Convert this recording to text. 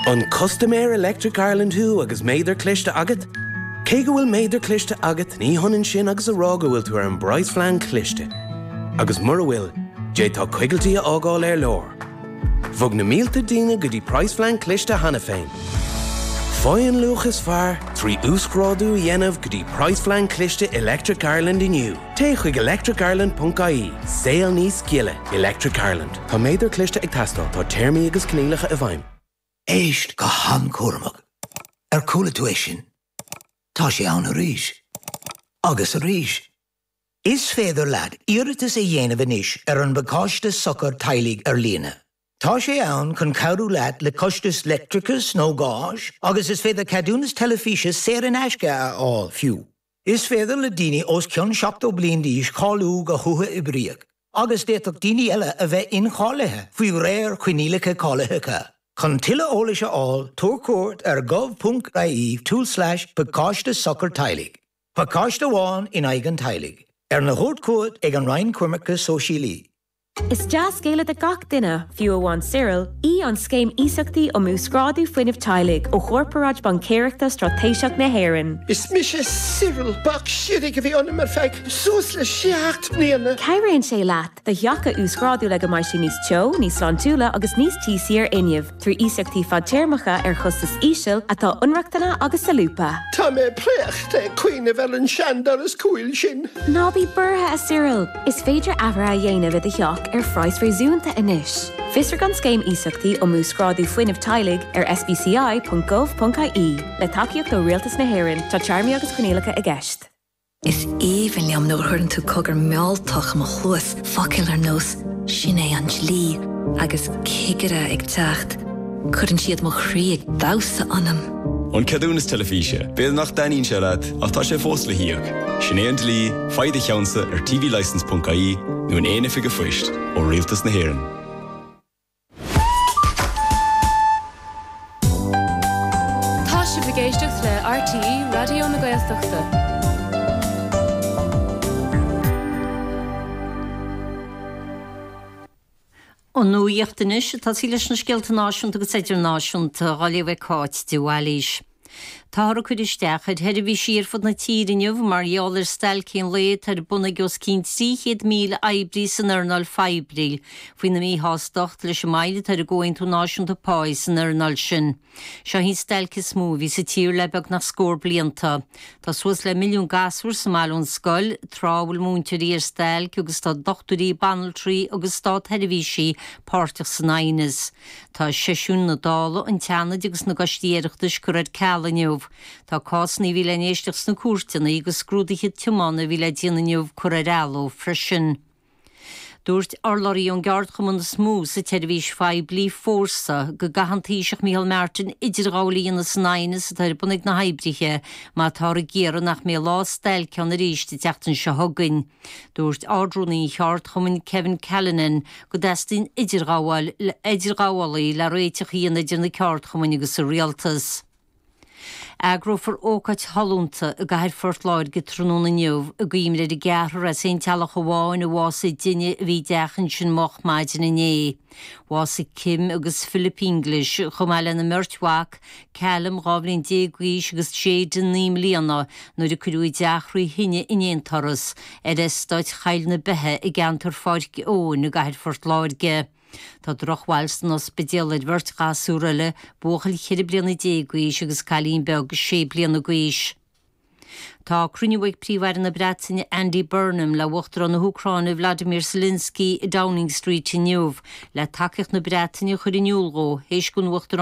An custaiméir Electric Ireland thú agus méadar cliste agat? Cé go bhfuil méadar cliste agat, ní hionann sin agus a rá go bhfuil tú ar an bpraghas-phlean cliste. Agus mura bhfuil, d'fhéadfá coigiltí a fhágáil ar lár. Bhog na mílte daoine go dtí praghas-phlean cliste cheana féin. Faigh an luach is fearr trí uasghrádú a dhéanamh go dtí praghas-phlean cliste Electric Ireland inniu. Téigh chuig electricireland.ie, Saol Níos Gile, Electric Ireland. Tá méadar cliste ag teastáil, tá téarmaí agus coinníollacha i bhfeidhm. Éist go han-chúramach. Ar chuala tú é sin? Tá sé ann arís. Agus arís. Is féidir leat iarratas a dhéanamh anois ar an bPacáiste Sochair Teaghlaigh ar líne. Tá sé ann chun cabhrú leat le costais leictreachais nó gáis agus is féidir ceadúnas teilifíse saor in aisce a fháil, fiú. Is féidir le daoine os cionn 70 bliain d'aois cáiliú go huathoibríoch agus d'fhéadfadh daoine eile a bheith incháilithe faoi réir coinníollacha cáilitheacha. Chun tuilleadh eolais a fháil, tabhair cuairt ar gov.ie tulslais pacáiste sochar teaghlaigh, pacáiste amháin in aghaidh an teaghlaigh, arna thabhairt chugat ag an Roinn Coimirce Sóisialaí. Is dea-scéala do gach duine, fiú amháin Cyril, í an Scéim Iasachtaí um Uasghrádú Fuinnimh Teaghlaigh ó Chorparáid Baincéireachta Straitéiseach na hÉireann. Is mise Cyril. Bac siorraidh a bhí ionam ar feadh suas le seacht mbliana. Cabhraíonn sé leat do theach a uasghrádú le go mbeidh sé níos teo, níos sláintiúla agus níos tíosaí ar fhuinneamh. trí iasachtaí fadtéarmacha ar chostas íseal atá ionrochtana agus solúbtha. Tá mé préachta ag cuimhneamh ar an seandoras cúil sin. Ná bí buartha, a Cyril! Is féidir athruithe a dhéanamh i do theach ar phraghas réasúnta anois. Fiosraigh an Scéim Iasachtaí um Uasghrádú Fuinnimh Teaghlaigh ar sbci.gov.ie. Le tacaíocht ó Rialtas na hÉireann, tá téarmaí agus coinníollacha i gceist. Is aoibhinn liom nuair a chuireann tú cogar mealltach i mo chluas, focail ar nós 'Sin é an dlí' agus 'cigire ag teacht', cuireann siad mo chroí ag damhsa ionam. An ceadúnas teilifíse, b'fhéidir nach dtaitníonn sé leat ach tá sé fós le híoc. Sin é an dlí, faigh do cheannsa ar tvlicense.ie nó in aon oifig an phoist ó Rialtas na hÉireann. Tá sibh ag éisteacht le RTÉ Raidió na Gaeltachta. An nuacht anois, tosóidh muid leis na scéalta náisiúnta agus idirnáisiúnta, á léamh ag Cáit de Bhailís. Táthar ag cur isteach ar sheirbhísí ar fud na tíre inniu mar gheall ar stailc aon lae atá ar bun ag os cionn 300,000 oibrí san earnáil phoiblí faoina míshástacht leis an moill atá ar an gcomhaontú náisiúnta pá san earnáil sin. Seo í an stailc is mó a bhí sa tír le beagnach scór blianta. Tá suas le milliún gasúr sa mbaile ón scoil tráth a bhfuil múinteoirí ar stailc agus tá dochtúirí, banaltraí agus stát-sheirbhísigh páirteach san aighneas. Tá seisiúin na Dála, an tSeanaid agus na gCoistí Oireachtais curtha ar ceal inniu. Tá cásanna a bhí le n-éisteacht sna cúirteanna agus scrúduithe tiomána a bhí le déanamh inniu curtha ar athló freisin. Dúirt urlabhraí ón gceardchumann is mó sa tseirbhís phoiblí, Fórsa, go gcaithfidh an Taoiseach Micheál Martin idirghabháil a dhéanamh san aighneas atá ar bun ag na hoibrithe mar táthar ag iarraidh nach mbeidh lá stailce ann arís an tseachtain seo chugainn. Dúirt Ard-Rúnaí an Cheardchumainn Kevin Callinan go dteastaíonn idirghabhálaí le réiteach a dhéanamh idir na ceardchumainn agus an Rialtas. Eagrófar ócáid shollúnta i gcathair Phort Láirge tráthnóna inniu i gcuimhne ar an gceathrar as aon teaghlach amháin a bhásaigh i dtine a bhí i dteach ansin moch maidin inné. Bhásaigh Kim agus Philip Inglis, chomh maith lena mbeirt mhac, Callum, dhá bhliain déag d'aois, agus Jayden, naoi mbliana, nuair a cuireadh a dteach trí thine in aon turas, ar eastát Choill na Beithe i gceantar Pháirc Eoghain i gcathair Phort Láirge. Tá drochbhail san ospidéal ar bheirt ghasúr eile, buachaill ceithre bliana déag d'aois agus cailín beag sé bliana d'aois. Tá cruinniú ag Príomh-Aire na Breataine Andy Burnham le Uachtarán na hÚcráine Vladimir Zelensky i Downing Street inniu, le tacaíocht na Breataine a chur in iúl dhó, théis don Uachtarán